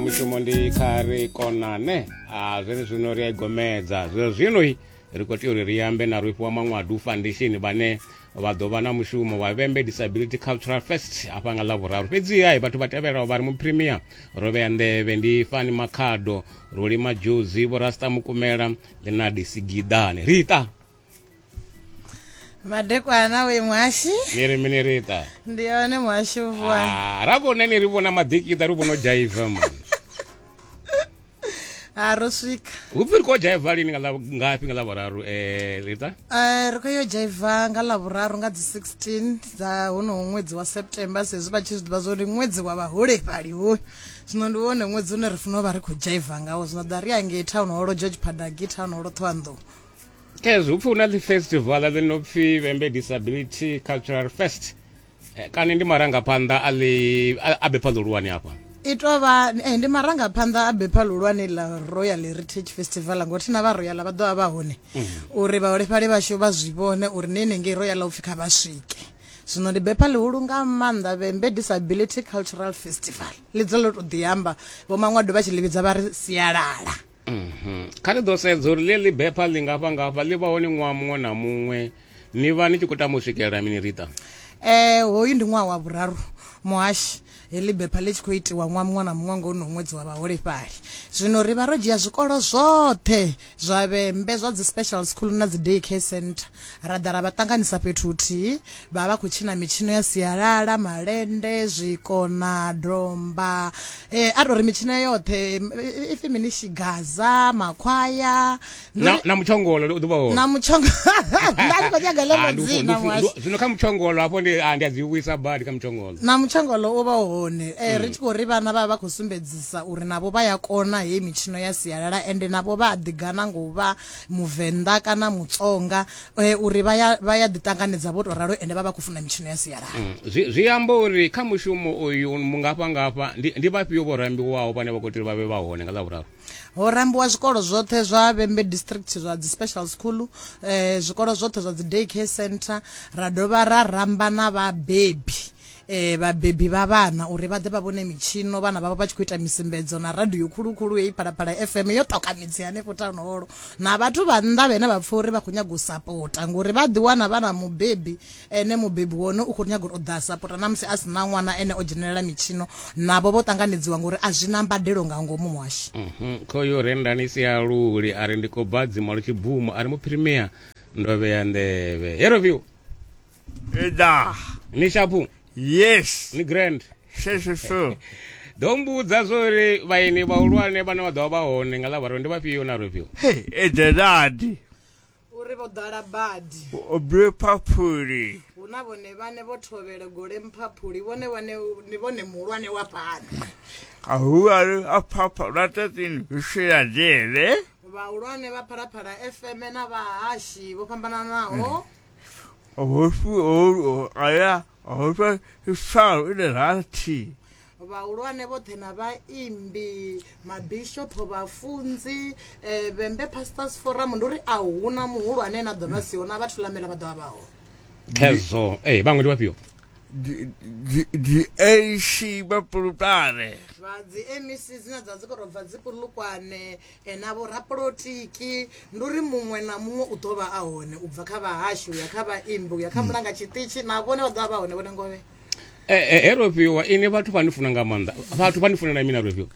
mushumo ndi kha ri konane a zwene zwino ri a igomedza zwe zwinoi ri khou tea uri ri ambe na rwifhiwa maṅwadu foundation vhane vha ḓo vha na mushumo wa vhembe disability cultural fest afha nga ḽavhuraru fhedziha vhathu vha tevhelaho vha ri mupremia ro vhea nḓevhe ndi fani makhado rulima dzhuzi vhorasta mukumela ḽinadi sigidane rita madekwana uyu mwashi niri minirita ndiyone mwashi uvua Ah, rakona niri vona madhikita ri vono jaivha mani harosvika upi ri ko jaivha lini nga la- ngapi nga lavararu um rita Eh, ri khou yo dzhaiva nga lavhuraru nga dzi 16 dza honoho ṅwedzi wa september sezwi vha tshi zwi ḓivha zwa uri ṅwedzi wa vhaholefhali hoyu zwino ndi wone ṅwedzi une ri fanela u vha ri khou dzhaiva ngawo zwino ḓa ri angei town holo george padagi town holo thohoyanḓou ezwi upfi hu na ḽifestivala ḽi no pfi vhembe disability cultural fest eh, kana ndi marangaphanḓa a ḽi a bepha ḽihulwane hafha i tou vha eh, ndi marangaphanḓa a bepha ḽihulwane ḽa royal heritage festival ngori thina vha royal vha ḓo vha vha hone mhm. uri vhaholefhali vhashu vha zwi vhone uri ni henengei royal upfi kha vha swike zwino ndi bepha ḽihulu nga maanḓa vhembe disability cultural festival ḽi dza ḽo tou ḓi amba vho maṅwado vha tshi ḽi vhidza vha ri sialala Mhm. Kha ri ḓo sedza uri ḽeḽi bepha ḽi ngafha ngafha ḽi vha hone ṅwaha muṅwe na muṅwe ni vha ni tshi khou tama u swikelela mini rita eh hoyu ndi ṅwaha wa vhuraru muhashi heḽi bepha ḽi tshi khou itiwa ṅwaha muṅwe na muṅwe ngo no ṅwedzi wa vhaholefhali zwino ri vha ro dzhia zwikolo zwoṱhe zwa vhembe zwa dzi special school na dzi day care center Ra ḓa ra vha ṱanganisa fhethu huthihi, vha vha vha khou tshina mitshino ya sialala, malende, zwikona, domba, a tou ri mitshino ya yoṱhe ipfhi mini shigaza, makhwaya na mutshongolo u ḓuvha hone. Na mutshongolo nda ndi khou nyaga ḽeḽo dzina mwashi. Zwino kha mutshongolo hafho ndi ndi a dzi vhuisa badi kha mutshongolo. Na mutshongolo u vha hone mm. ri tshi khou ri vhana vha vha khou sumbedzisa uri navho vha ya kona heyi mitshino ya sialala ende navho vha a ḓigana ngo vha Muvenḓa kana Mutsonga eh, uri vha ya vha ya ḓiṱanganedza vho tou ralo ende vha vha khou funa mitshino ya sialala. Mm, zwi, zwi amba uri kha mushumo uyu mungafha ngafha ndi, ndi vhafhio vho rambiwaho vhane vha khou tea uri vha vhe vha hone nga ḽa vhuraru Ho rambiwa zwikolo zwoṱhe zwa Vhembe District zwa dzi special school eh, zwikolo zwoṱhe zwa dzi day care center ra dovha ra ramba na vhabebi eh, vhabebi vha vhana uri vha ḓe vha vhone mitshino vhana vhavho vha tshi khou ita misimbedzo na radio khulukhulu heyi phalaphala fm yo ṱoka midzi hanefho tanholo na vhathu vha nnḓa vhene vha pfha uri vha khou nyaga u sapota ngori vha ḓiwana vha na mubebi ene mubebi wone u khou nyaga uri u ḓa a sapota na musi a si na ṅwana ene o dzhenelela mitshino navho vho ṱanganedziwa ngori a zwi na mbadelo nga ngomu muhashi Mhm, khoyo rendani sialuli a ri ndi khou bva dzimalo tshibvumo a ri muphirimea ndo vhea nḓevhe heroview Et da. ni shapu Yes. ni grand She she so. ḓo mbudza zwori vhaeni vhahulwane vhane vha ḓovha vha hone nga ḽavharo ndi vhafhio na rofhio Hey, et da dadi. uri vho ḓala badi Obre papuri. hu na vhone vhane vho thovhela gole mphaphuli vhone vhane ni vhone muhulwane wa fhano Ahuaru apapa ratatin vishira dele. vhahulwane vha phalaphala fm na vhahashi vho fhambananaho hofu ho aya hofa ifalo ine rathi vhahulwane vhoṱhe na vhaimbi mabishopho vhafunzi um vhembe pastors forum ndi uri a huna muhulwane na ḓo vha siho na vhathu lamela vha ḓovha vhaho khezwo e vhaṅwe ndi vhafhio diac vhapulutane vha dzi mec dzine dza dzi korobva dzipulukwane na vhorapolotiki ndi uri muṅwe na muṅwe u ḓo vha a hone u bva kha vhahashu ya kha vhaimbi u ya kha mulanga tshiṱitshi na vhone vha ḓo vha vha hone vhone ngovhe eh, eh, he rofhiwa ini vhathu vha ni funa nga maanḓa vhathu vha ni funela mina rofhiwa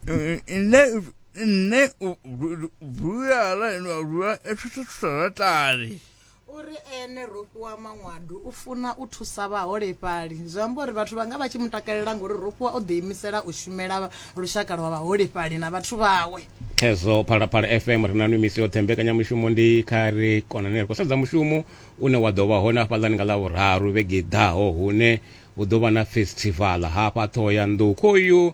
eh, nṋe nṋe vhuyala lwa lwa etshithu tsharatali U ri ene Rofhi wa Manwadu u funa u thusa vhaholefhali. Zwi amba uri vhathu vha nga vha tshi mu takalela ngauri Rofhiwa o ḓiimisela u shumela lushaka lwa vhaholefhali na vhathu vhawe. Khezwo Phalaphala FM ri na nwi misi yoṱhe. Mbekanyamushumo ndi kha ri konane. Ri khou sedza mushumo une wa ḓo vha hone hafhaḽani nga Ḽavhuraru vhege i ḓaho hune hu ḓo vha na festivala hafha Ṱhohoyanḓou. Khoyu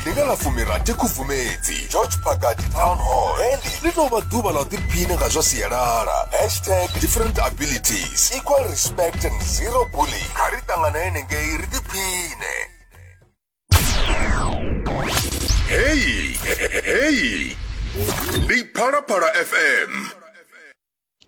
ndi nga ḽa fumirathi khubvumedzi george pagadi town hall heḽi ḽi tou vha ḓuvha ḽa u ḓiphina nga zwa sialala hashtag different abilities equal respect and zero bully kha ri ṱangana henengei ri ḓiphine heyi heyi ndi phalaphala fm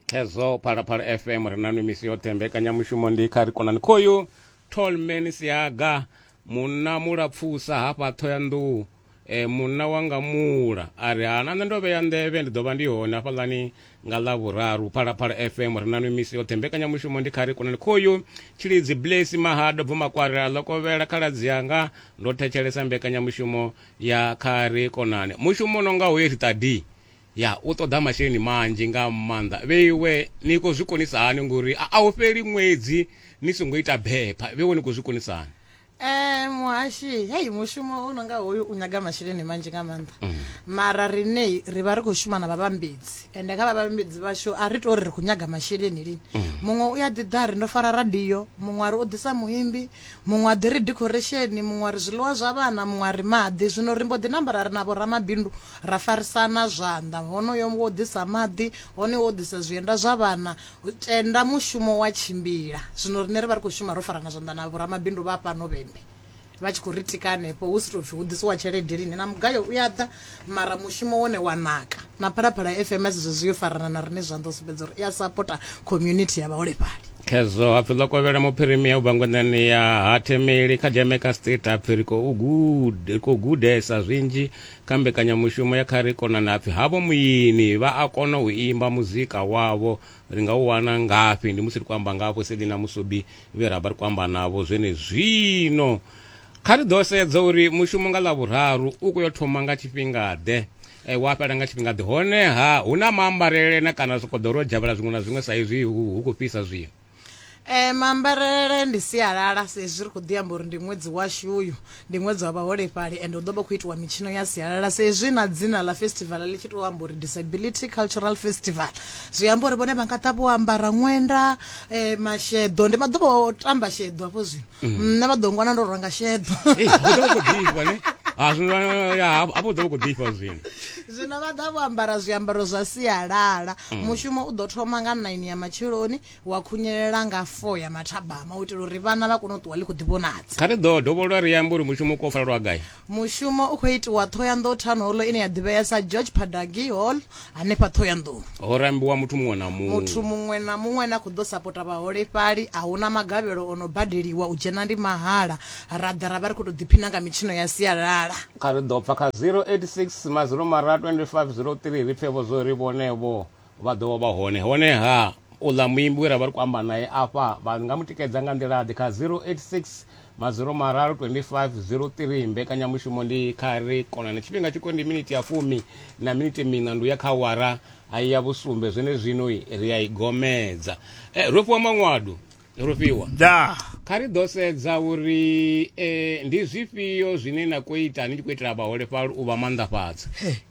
khezwo phalaphala fm ri nanu misi yoṱhe mbekanyamushumo ndi kha ri konani khoyu tolman siaga munna mulapfusa hafha thoyandou e, munna wanga mula a ri hana nṋe ndo vhea nḓevhe ndi ḓo vha ndi hone hafhaḽani nga ḽa vhuraru phalaphala fm ri nanu misi yoṱhe mbekanyamushumo ndi kha ri konani khoyu tshilidzi blesi mahado bvumakwarela ḽo kovhela khaladzi yanga ndo thetshelesa mbekanyamushumo ya kha ri konani mushumo no nga hoye ri tadi Ya u ṱoḓa masheleni manzhi nga maanḓa. Vheiwe ni khou zwi konisa hani ngori a hu fheli ṅwedzi ni songo ita bepha? Vheiwe ni khou zwi konisa hani? Eh muhashi hei mushumo u no nga hoyu u nyaga masheleni manzhi nga maanḓa mm. mara rine ri vha ri khou shuma na vhavhambedzi ende kha vhavhambedzi vhashu a ri tori ri khou nyaga masheleni lini mm. muṅwe u ya ḓi ḓa ri ndo fara radio muṅwe a ri o ḓisa muimbi Muṅwe a ḓi ri dikhoresheni, muṅwe a ri zwiḽiwa zwa vhana, muṅwe a ri maḓi. Zwino ri mbo ḓi namba ra ri na vhoramabindu ra farisana zwanḓa, honoyo wo ḓisa maḓi, honoyo wo ḓisa zwienda zwa vhana, tenda mushumo wa tshimbila. Zwino riṋe ri vha ri khou shuma ro farana zwanḓa na vhoramabindu vha hafhano vhembe vha tshi khou ri tika hanefho, hu si tou pfi hu ḓisiwa tshelede lini, na mugayo u a ḓa, mara mushumo wone wa naka na phalaphala fm a zwezwo zwi yo farana na rine zwanḓa u sumbedza uri i a sapota community ya vhaholefhali khezwo hapfi ḽo kovhela muphirimia u bva ngwenḓani ya ha themeli kha jamaica state hapfi ri khou gude- ri khou gudesa zwinzhi kha mbekanyamushumo ya kha ri konana hapfi havho muini vha a kona u imba muzika wavho ri nga u wana ngafhi ndi musi ri khou amba ngavho selina musubi vhe ra vha ri khou amba navho zwenezwino Kha ri ḓo sedza uri mushumo nga Ḽavhuraru u khou yo thoma nga tshifhinga-ḓe eh, wa fhela nga tshifhinga-ḓe. Honeha hu na maambarele na kana zwi khou ḓo ro dzhavhela zwiṅwe na zwiṅwe sa izwi hu hu khou fhisa zwino. Eh, maambarele ndi sialala sa izwi ri khou ḓi amba uri ndi ṅwedzi washu uyu ndi ṅwedzi wa vhaholefhali and hu ḓo vha khou itiwa mitshino ya sialala sa izwi na dzina ḽa festival ḽi tshi tou amba uri disability cultural festival zwi amba uri vhone vha nga ḓa vho ambara ṅwenda eh, masheḓo ndi vha ḓo vho tamba sheḓo hafho zwino Mm. nṋe vha ḓo ngwana ndo ranga sheḓo Ei, hu ḓo vha khou ḓifha ne Ah, zwino, ah, ya, hafho hafho hu ḓo vha khou ḓifha zwino zwino vha ḓa vho ambara zwiambaro zwa sialala Mm. mushumo u ḓo thoma nga 9 ya matsheloni wa khunyelela nga 4 ya mathabama u itela uri vhana vha kone u ṱuwa ḽi khou ḓivhonadza kha ri ḓo dovholola ri ambe uri mushumo u kofalelwa gai Mushumo u khou itiwa Thohoyandou Town Hall ine ya ḓivhea sa George Padagi Hall hanefha Thohoyandou. Ho rambiwa muthu muṅwe na muṅwe. Muthu muṅwe na muṅwe ane a khou ḓo sapota vhaholefhali a huna magavhelo o no badeliwa u dzhena ndi mahala ra ḓa ra vha ri khou tou ḓiphina nga mitshino ya sialala. Kha ri ḓo pfa kha 086 mazilo mara 2503 ri pfe vho zwo ri vhone vho. vha ḓo vha vha hone honeha uḽa muimbi we ra vha ri khou amba nae afha vha nga mu tikedza nga nḓila ḓe kha 086 maziro mararu 2503 mbekanyamushumo ndi kha ri konane tshifhinga tshiko ndi miniti ya fumi na miniti mina ndu ya kha wara a ya vhusumbe zwene zwino ri a i gomedza e, ro fhiwa maṅwadu ro fhiwa da kha ri ḓo sedza uri e, ndi zwifhio zwine na khou ita ni tshi khou itela vhaholefhali u vha maanḓafhadza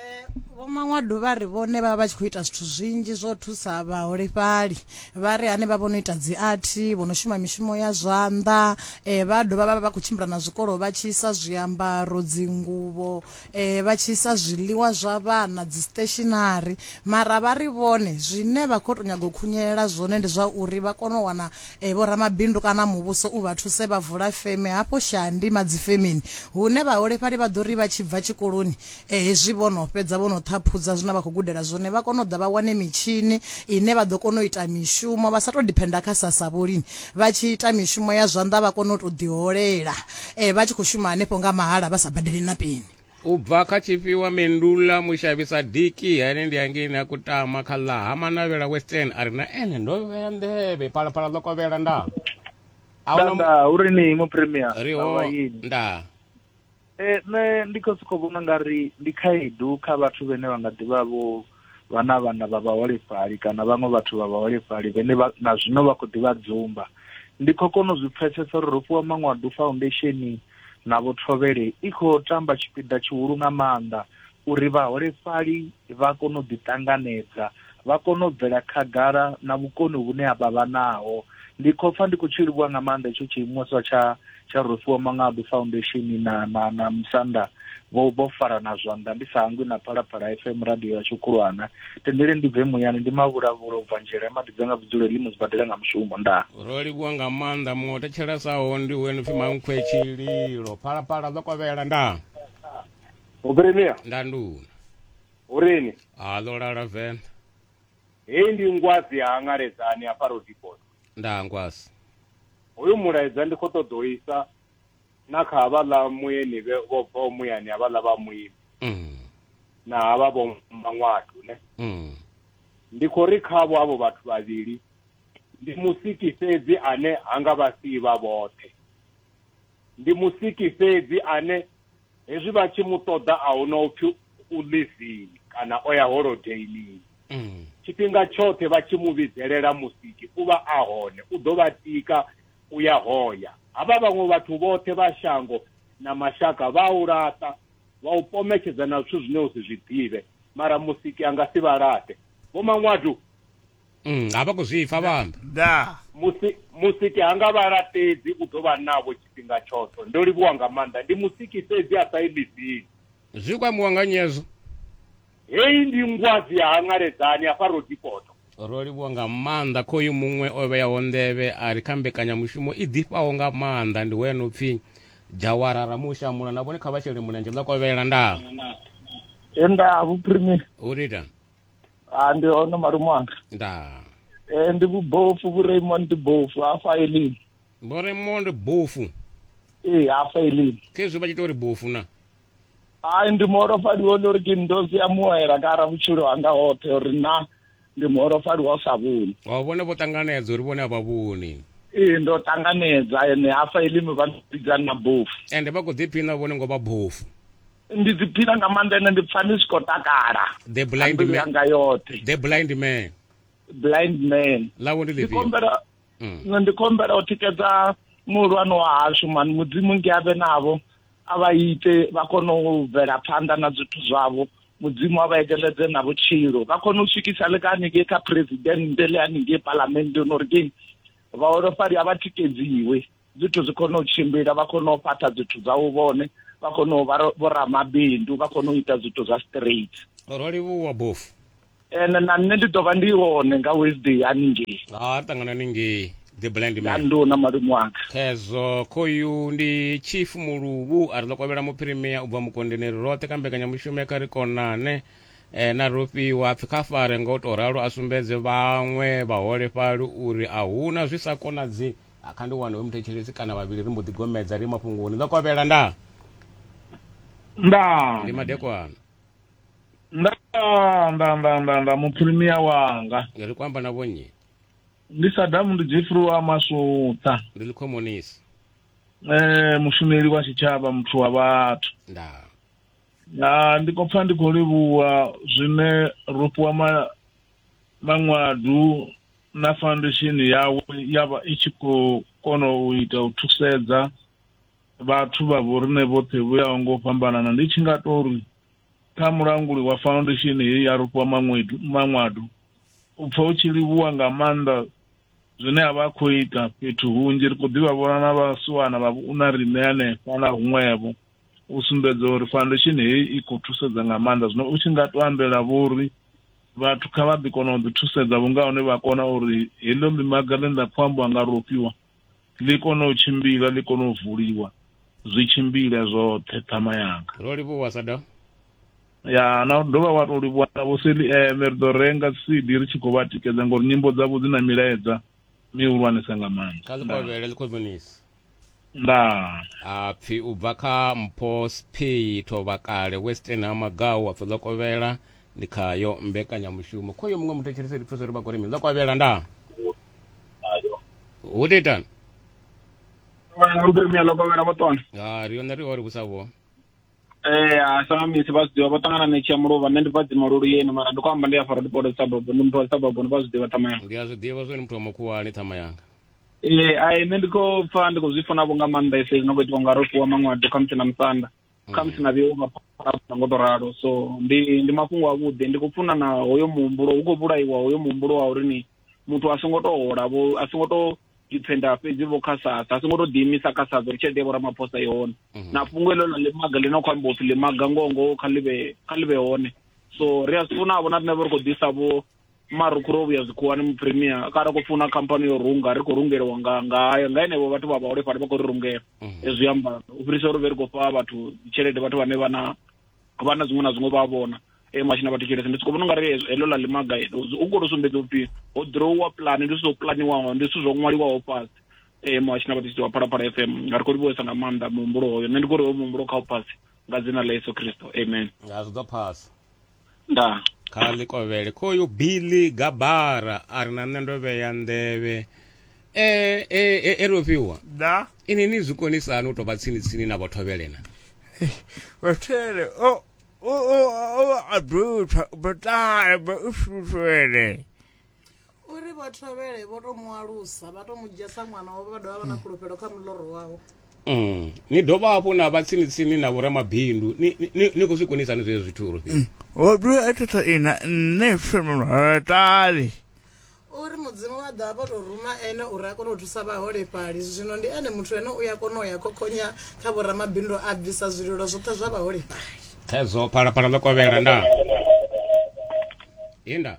Eh, vho maṅwado vha ri vhone vha vha tshi khou ita zwithu zwinzhi zwo thusa vhaholefhali vha ri hanevha vho no ita dzi athi vho no shuma mishumo ya zwanḓa um vha dovha vha vha vha khou tshimbila na zwikolo vha tshi isa zwiambaro dzinguvho um vha tshi isa zwiḽiwa zwa vhana dzi stationary mara vha ri vhone zwine vha khou tou nyaga u khunyelela zwone ndi zwa uri vha kone u wana Vhoramabindu kana muvhuso u vha thuse vha vula feme hafho Shandi madzifemeni hune vhaholefhali vha ḓo ri vha tshi bva tshikoloni hezwi vho no fhedza vho no ṱhaphudza zwine vha khou gudela zwone vha kone u ḓa vha wane mitshini ine vha ḓo kona u ita mishumo vha sa tou diphenda kha sassa vho lini vha tshi ita mishumo ya zwanḓa vha kone u tou ḓiholela vha tshi khou shuma hanefho nga mahala vha sa badeli na peni. u bva kha tshifhiwa mendula mushavhisa diki hene ndi hangeni a kutama kha ḽa ha manavhela western a ri na ene ndo vhea nḓevhe phalaphala ḽo kovhela nda nda uri ni mu premier riho nda eh nṋe ndi khou sokou vhona nga ri ndi khaedu kha vhathu vhene vha nga ḓivha vho vha na vhana vha vhaholefhali kana vhaṅwe vhathu vha vhaholefhali vhene na zwino vha khou ḓi vha dzumba ndi khou kona u zwi pfesesa uri Rofhiwa Maṅwadu Foundation na Vho Thovhele i khou tamba tshipiḓa tshihulu nga maanḓa uri vhaholefhali vha kone u ḓiṱanganedza vha kone u bvela khagala na vhukoni vhune a vha vha naho ndi khou pfa ndi khou tshi livhuwa nga maanḓa itsho tshiimiswa tsha tsha Rufuwa Mangabu Foundation na na na Musanda vho vho farana zwanḓa ndi sa hangwi na Phalaphala FM radio ya Tshukhulwana tendele ndi bve muyani ndi mavhulavhula u bva nzhele madi dza nga vhudzulo ḽi mu zwibadela nga mushumo nda ro livhuwa nga maanḓa muṅwe o thetshelesaho ndi uyo no pfi mankhwe tshililo phalaphala ḓo kovhela nda Ubrenia nda nduna urini a ḓo lala venḓa Heyi ndi Ngwazi ya Hangaledzani hafha Roodepoort. Ndaa Ngwazi. Hoyu mulaedza ndi khou ṱoḓa u isa na kha havhaḽa muyeni vhe vho bvaho muyani havhaḽa vha muimbi na havha vho Maṅwatu ne. Ndi khou ri khavho havho vhathu vhavhili ndi Musiki fhedzi ane ha nga vha sii vha vhoṱhe. Ndi Musiki fhedzi ane hezwi vha tshi mu ṱoḓa a hu na upfi u livini kana o ya holodeilini mm. tshifhinga tshoṱhe vha tshi mu vhidzelela musiki u vha a hone u ḓo vha tika u ya hoya havha vhaṅwe vhathu vhoṱhe vha shango na mashaka vha u laṱa vha u pometshedza na zwithu zwine u si zwi ḓivhe mara musiki a nga si vha laṱe vho maṅwadu Mm, a vha khou zwi pfa vha amba da musi musiki ha nga vha laṱedzi u ḓo vha navho tshifhinga tshoṱhe ndo livhuwa nga maanḓa ndi musiki fhedzi a sa yi ḽivini zwi khou ambiwa nga nyezo heyi ndi ngwazi ya hangaledzani hafha rodipoto ro livhuwa nga maanḓa khoyu muṅwe o vheyaho nḓevhe a ri kha mbekanyamushumo i ḓifhaho nga maanḓa ndi hoya no pfi jawara ramushamula na vhone kha vha shele mulenzhe ḽa kovhela ndaa he nda vhuphirime u ri ita a ndi hone malume wanga ndaa Eh, ndi vhubofu vhu raymond bofu hafha elini vho raymond bofu ee hafha elini khezwi vha tshi ita uri bofu na hayi ndi muholofhali wone uri ke ndozi ya muwela kara vhutshilo hanga hoṱhe uri na ndi muholofhali wa u sa vhoni wa vhone vho ṱanganedza uri vhone a vha vhoni ee ndo ṱanganedza ene hafha elimi vha vhidzani na bofu ende vha khou ḓiphina vhone ngo vha bofu ndi ḓiphina nga maanḓa ene ndi pfa ni si khou takala the blind man yanga yoṱhe the blind man blind man lawo ndi ḽifhio ndikombela mm. ndikombela u tikedza muhulwane wa hashu mani mudzimu ngi avhe navho a vha ite vha kone u bvela phanḓa na zwithu zwavho mudzimu a vha ekeledze na vhutshilo vha kone u swikisa le ka haningei kha presidente le haningei palamende no ri keng vhaholofhali a vha tikedziwe zwithu zwi kone u tshimbila vha kone u fhaṱha zwithu zwau vhone vha kone u vha vhoramabindu vha kone u ita zwithu zwa straight ro livhuwa bofu ene na nṋe ndi ḓo vha ndi hone nga wednesday haningei ha ṱangana ningei the blind man ndu na malume wanga khezwo khoyu ndi chief muluvhu a ri ḓo kovhela muphirimia u bva mukondeneri roṱhe kha mbekanyamushumo ya kha ri konane eh, na rofhiwa pfi kha fare nga u tou ralo a sumbedze vhaṅwe vhaholefhali uri a huna zwi sa konadzi A kha ndi wane we muthetshelesi kana vhavhili ri mbo ḓi gomedza ri mafhungoni ndo kovhela nda nda ndi madekwana nda nda nda nda nda muphirimiya wanga ri kwamba na vhonnyi ndi sadamu ndi jefri wa masutha ndi likhomonisi eh mushumeli wa tshitshavha muthu wa vhathu nda na ndi khou pfa ndi khou livhuwa zwine ro fhiwa ma maṅwadu na foundation yawe ya vha i tshi khou kona u ita u thusedza vhathu vha vho riṋe vhoṱhe vho yaho ngo fhambanana ndi tshi nga tou ri kha mulanguli wa foundation heyi ya rufhiwa maṅwedu maṅwado u pfa u tshi livhuwa nga maanḓa zwine a vha a khou ita fhethu hunzhi ri khou ḓivha vhona na vhasiwana vha vhuna riṋe hanefha na huṅwevho u sumbedza uri foundation heyi i khou thusedza nga maanḓa zwino u tshi nga to ambela vhori vhathu kha vha ḓi kona u ḓi thusedza vhunga hone vha kona uri heḽo ḽimaga ḽine ḽa khou ambiwa nga rofhiwa ḽi kone u tshimbila ḽi kone u vuliwa zwi tshimbile zwoṱhe ṱhama yanga ro livhuwa sa dovha ya na dovha wa to livhuwa na vho seli eme eh, ri ḓo renga cd ri tshi khou vha tikedza ngori nyimbo dzavho dzi na milaedza mihulwanesa nga maanḓa kha ḽikovhele ḽikhozonisi ndaa a pfi u bva kha mpho sphi thovha kale western ha magau a pfi ḽokovhela ndi khayo mbekanyamushumo khoyo muṅwe muthu tshirisa ri thusa uri vha kone mini ḽokovhela ndaa hu ḓi itani mpemia ḽokovhela vho tona ha ri yone ri ori hu sa vho Eh, a sa misi vha zwiḓivha vho ṱangana na tshi ya muluvha nṋe ndi bva dzimululu yeni mara ndi khou amba ndi ya fara dipodo dza bobo ndi muthu wa sabobo ndi vha zwiḓivha ṱamaya ndi a zwi ḓivha zwone muthu wa mukhuwani ṱhama yanga ee ai nṋe ndi khou pfa ndi khou zwi funa vho nga maanḓa ese no khou itiwa nga ro fhiwa maṅwado khamusi na musanda mm. khamusi na vheiwa mapharapha ngo to ralo so ndi ndi mafhungo avhuḓi ndi khou funa na hoyo muhumbulo hu khou vhulaiwa hoyo muhumbulo wa uri ni muthu a songo to hola vho a songo to dipfenda fhedzi vho kha sasa a songo to ḓiimisa kha sasa uri tshelede ya vhoramaphosa i hone mhm. na fhungo elo ḽa ḽimaga ḽi no khou amba upfi ḽimaga ngongo kha ḽivhe kha ḽivhe hone so ri a zwi funa vho na riṋe vho ri khou ḓisa vho mara u khura vhuya zwikhuwani mupremier kara khou funa khamphani yo runga ri khou rungeliwa nga ngayo nga henevho vhathu vha vhaholefhali vha khou ri rungela mm. hezwi amba u fhirisa uri vhe ri khou fha vhathu tshelede vhathu vhane vha na vha na zwiṅwe na zwiṅwe vha vhona e mashin a vhathu tshelede ndi soko vhona ungari heḽo ḽa limaga u khou to sumbedza upfi ho drowa pulani ndi zwithu zwo pulaniwaho ndi zwithu zwo ṅwaliwaho fhasi e muhashi na vhathu wa phalaphala f m nga ri khou livhuwesa nga maanḓa muhumbulo hoyo nṋe ndi khou ri hoyo muhumbulo kha u phasi nga dzina ḽa yesu kristo amen nga zwi ḓo phasa nda kha ḽi kovhele khoyu billy gabara a ri na nṋe ndo vhea nḓevhe e e e e rofhiwa da ini ni zwi konisani u tou vha tsini tsini na vhothovhelena vhathele o o o o a dutha botale ba u shutwele uri vha thovhele vho to mu alusa vha to mu dzhia sa ṅwana wavho vha dovha vha na fhulufhelo kha muloro wavho Mm. ni dovha hafhu na vha tsini tsini na vhoramabindu ni, ni, ni, ni khou zwi konisa ni zwezwo zwithu uri mm. o dovha a thotha ina nṋe fhemulhatali uri mudzimu wa ḓa vho to ruma ene uri a kone u thusa vhaholefhali zwino ndi ene muthu ene u ya kona u ya khokhonya kha vhoramabindu a bvisa zwililo zwoṱhe zwa vhaholefhali thedzo phalaphala ḽo kovhela nda inda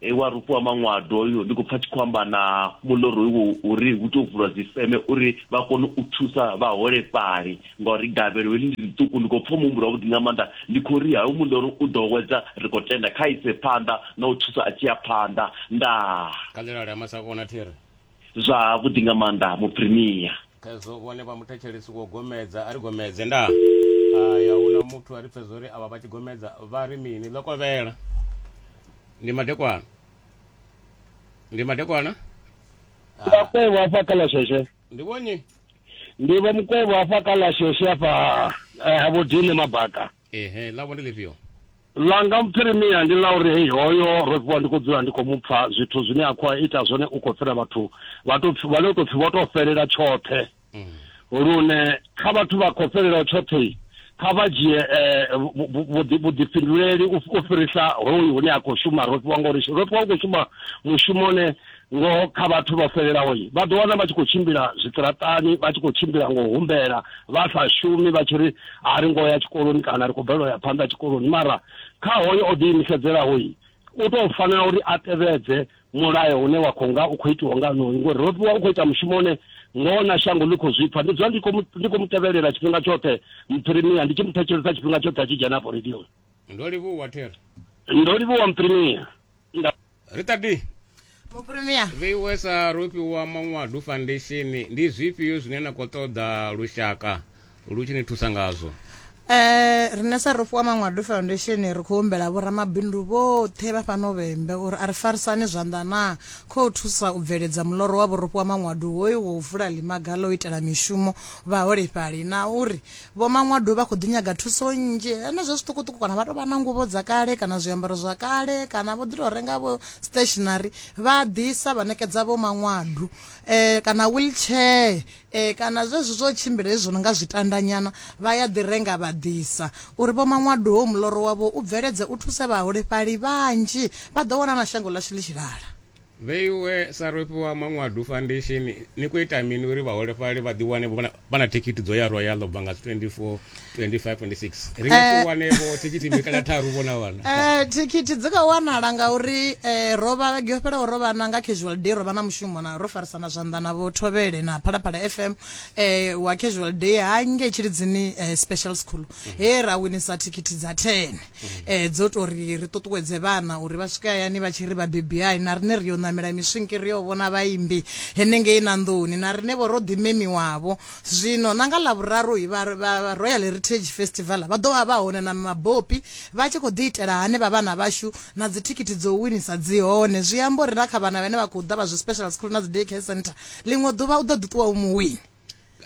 e wa rufu wa maṅwado hoyo ndi khou pfa tshi khou amba na muḽoro iwo uri hu tou vulwa dzifeme uri vha kone u thusa vhaholefhali ngauri gavhelo heḽi ndi ḽiṱuku ndi khou pfa muhumbulo wavhuḓi nga maanḓa ndi khou ri hayo muḽoro u ḓo wedza ri khou tenda kha ise phanḓa na u thusa a tshi ya phanḓa ndaa khanḓelale ha masakona thiri zwa vhuḓi nga maanḓa muprimiya phezo vhone vha muthetshelesi wo gomedza a ri gomedze nda aya hu na muthu a ri pfezo uri avha vha tshi gomedza vha ri mini ḽo kovhela ndi madekwana ndi madekwana vhakwevho hafha kha lasheshe ndi vhonyi ndi vha mukwevho hafha kha lasheshe hafha eh, ha vhodine mabaka ehe ḽavho ndi ḽifhio ḽa nga muphirimia ndi ḽa uri hei hoyo ro fhiwa ndi khou dzula ndi khou mu pfa zwithu zwine a khou ita zwone u khou fhira vhathu vha to vha no tou pfhi vho tou fhelela tshoṱhe mm. lune kha vhathu vha khou fhelelaho tshoṱhe kha vha dzhie eh, vhuḓifhinduleli u fhirisa hoyu hune a khou shuma ro fhiwa ngauri ro fhiwa u khou shuma mushumo une Ngoho kha vhathu vho fhelelaho, vha ḓo wana vha tshi khou tshimbila zwiṱiraṱani, vha tshi khou tshimbila nga u humbela, vha sa shumi, vha tshi ri, A ri ngo ya tshikoloni kana ri khou balelwa u ya phanḓa tshikoloni. Mara kha hoyo o ḓiimisedzelaho, u tou fanela uri a tevhedze mulayo une wa khou nga u khou itiwa nga onoyu, ngori ro fhiwa u khou ita mushumo une ngoho na shango ḽi khou zwi pfa. Ndi dzula ndi khou mu, ndi khou mu tevhelela tshifhinga tshoṱhe Mphirimia, ndi tshi mu thetshelesa tshifhinga tshoṱhe a tshi dzhena afho radioni. Ndo livhuwa, Terry. Ndo livhuwa Mphirimia. Nda. rita d mupremier vheiwe sa rofhi wa manwadu foundation ndi zwifhio zwine na khou ṱoḓa lushaka lu tshi ni thusa ngazwo Eh rine sa rufu wa Mangwado Foundation ri khou humbela vho ramabindu vhoṱhe vha fhano vhembe uri a ri farisane zwanḓa na khou thusa u bveledza muloro wa vhurufhi wa Mangwado hoyu wo vula ḽimaga ḽo itela mishumo vhaholefhali na uri Vho Maṅwadu vha khou ḓi nyaga thuso nnzhi henezwo zwiṱukuṱuku kana vha tou vha na nguvho dza kale kana zwiambaro zwa kale kana vho ḓi tou renga vho stationary vha ḓisa vha ṋekedza vho Maṅwadu um kana wheelchair um kana zwezwi zwo tshimbila hezwi zwo no nga zwitandanyana vha ya ḓi renga vha ḓisa uri vho Maṅwadu ho muloro wavho u bveledze u thuse vhaholefhali vhanzhi vha ḓo wana na shango ḽashu ḽi tshilala. Vheiwe sa rofhi wa Manwadu Foundation, ni khou ita mini uri vhaholefhali vha ḓiwane vho vha na thikhithi dzo ya Royal u bva nga 24, 25, 26? Ri nga si eh. wane vho thikhithi mbili kana tharu vho na vhana. Eh, thikhithi dzi khou wanala ngauri eh, ro vha vhege yo fhelaho ro vha na nga casual day ro vha na mushumo na ro farisana zwanḓa na vho Thovhele na Phalaphala FM eh, wa casual day ha nge Tshilidzini eh, special school mm. he ra winisa thikhithi dza 10. eh dzo to ri ri ṱuṱuwedze vhana uri vha swike hayani vha tshi ri vhabebi hai na rine ri yo namela miswinki ri yo vhona vhaimbi henengei na nḓuni na rine vho ro ḓi memiwavho zwino na nga ḽa vhuraru hi vha- vha- vha royal heritage festival vha ḓo vha vha hone na mabopi vha tshi khou ḓi itela hane vha vhana vhashu na dzithikhithi dzo winisa dzi hone zwi amba uri na kha vhana vhane vha khou ḓa vha zwi special school na dzi day care center ḽiṅwe ḓuvha u ḓo ḓi ṱuwa u muwini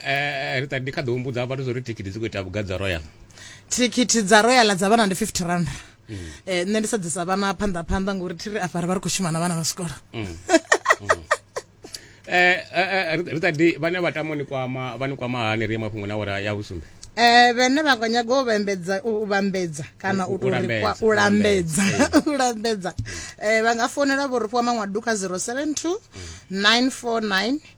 eh, rita ndi kha ḓi humbudza vhathu zwo ri thikhithi dzi khou ita vhugai dza royal thikhithi dza royal dza vhana ndi 50 rand mm. eh, nṋe ndi sa ḓisa vhana phanḓa phanḓa ngori thi ri afha ri vha ri khou shuma na vhana vha sikolo mm. mm. eh, eh, rita ndi vhane vha tamo ni kwama vha ni kwama hani ri ye mafhungo na wora ya vhusumbe eh vhene vha nga nyaga u vhambedza u vhambedza kana u tou rikwa u lambedza u lambedza eh vha nga fonela vho ri fhiwa maṅwadu kha 072 949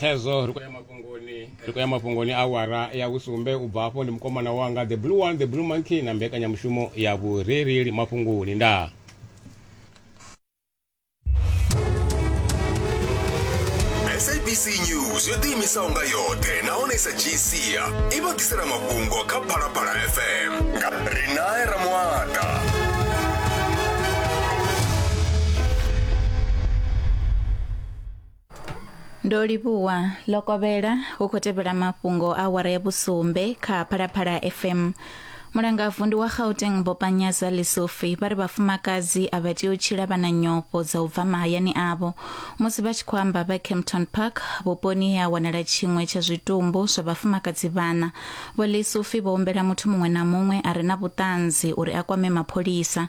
khezwo ri khou ya mafhungoni ri khou ya mafhungoni awara ya vhusumbe u bva afho ndi mukomana wanga the blue one the blue monkey na mbekanyamushumo ya vhurereli mafhungoni ndaa sabc news yo ḓiimisaho nga yoṱhe nahone sa gcia i vha ḓisela mafhungo kha phalaphala fm nga rinae ramuata ndo livhuwa lokovhela hu khou tevhela mafhungo a wara ya vhusumbe kha phalaphala fm mulangavu ndi wa gauteng bopanyaza lesofi vha ri vhafumakadzi a vha tea u tshila vha na nyofho dza u bva mahayani avho musi vha tshi khou amba vha campton park vhuponi he ha wanala tshiṅwe tsha zwitumbu zwa vhafumakadzi vhana vho lesofi vho humbela muthu muṅwe na muṅwe a re na vhuṱanzi uri a kwame mapholisa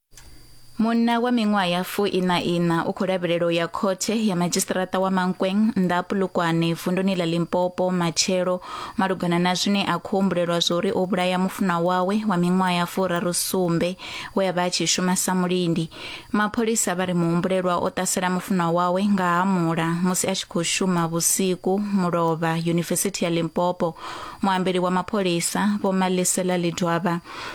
Munna wa miṅwaha ya fu ina ina u khou lavhelela u ya khothe ya madzhisiṱiraṱa wa Mankweng nnḓa ha Pulukwane vunduni ḽa Limpopo matshelo malugana na zwine a khou humbulelwa zwori o vhulaya mufunwa wawe wa miṅwaha ya furaru sumbe we a vha a tshi shuma sa mulindi. Mapholisa vha ri muhumbulelwa o ṱasela mufunwa wawe nga ha mula musi a tshi khou shuma vhusiku Mulovha, Yunivesithi ya Limpopo. Muambeli wa mapholisa Vho Malisela Lidwaba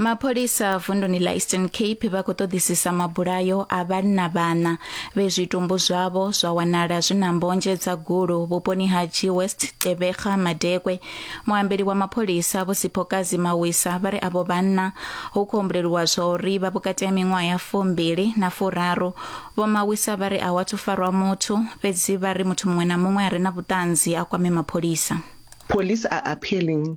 mapholisa vunduni la eastern cape vha khou ṱoḓisisa mabulayo a vhanna vhana vhe zwitumbu zwavho zwa wanala zwi na mbonzhe dza gulu vhuponi ha g west tebega madekwe muambeli wa mapholisa vho siphokazi mawisa vha ri avho vhanna hu khou humbuleliwa zwa uri vha vhukati ha miṅwaha ya fumbili na furaru vho mawisa vha ri a wathu farwa muthu fhedzi vha ri muthu muṅwe na muṅwe a re na vhuṱanzi a kwame mapholisa Police are appealing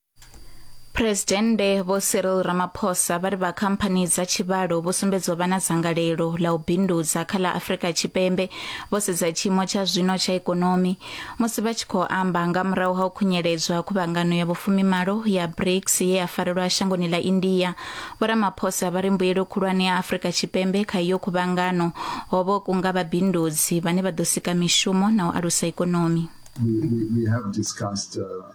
Presidennde Vho Cyril Ramaphosa vha ri vha khamphani dza tshivhalo vho sumbedzwa vha na dzangalelo ḽa u bindudza kha ḽa Afrika Tshipembe vho sedza tshiimo tsha zwino tsha ikonomi musi vha tshi khou amba nga murahu ha u khunyeledzwa khuvhangano ya vhufumimalo ya BRICS ye ya farelwa shangoni ḽa India. Vho Ramaphosa vha ri mbuyelo khulwane ya Afrika Tshipembe kha iyo khuvhangano ho vho kunga vhabindudzi vhane vha ḓo sika mishumo na u alusa ikonomi. We, we, we have discussed uh,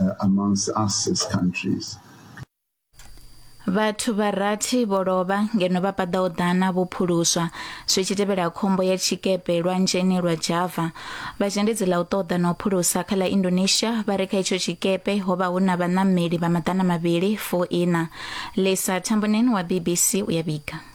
uh, amongst us as countries. vhathu vha rathi vho lovha ngeno vha paḓaho ḓana vho phuluswa zwi tshi tevhela khombo ya tshikepe lwanzheni lwa java vha zhendedzi ḽa u ṱoḓa na u phulusa kha ḽa indonesia vha ri kha itsho tshikepe ho vha hu na vhaṋameli vha maḓana mavhili fo ina lisa tambonen wa bbc u ya vhiga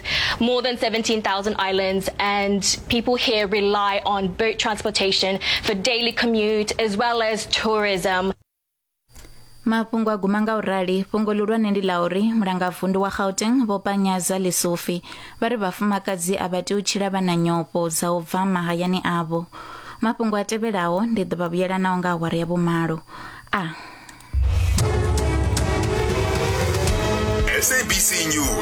more than 17,000 islands, and people here rely on boat transportation for daily commute as well as tourism. mafhungo a guma nga u rali fhungo ḽihulwane ndi ḽa uri mulangavundu wa gauteng vho panyaza lisufi vha ri vhafumakadzi a vha tea u tshila vha na nyofho dza u bva mahayani avho mafhungo a tevhelaho ndi ḓo vha vhuyelanaho nga awara ya vhumalo a sabc news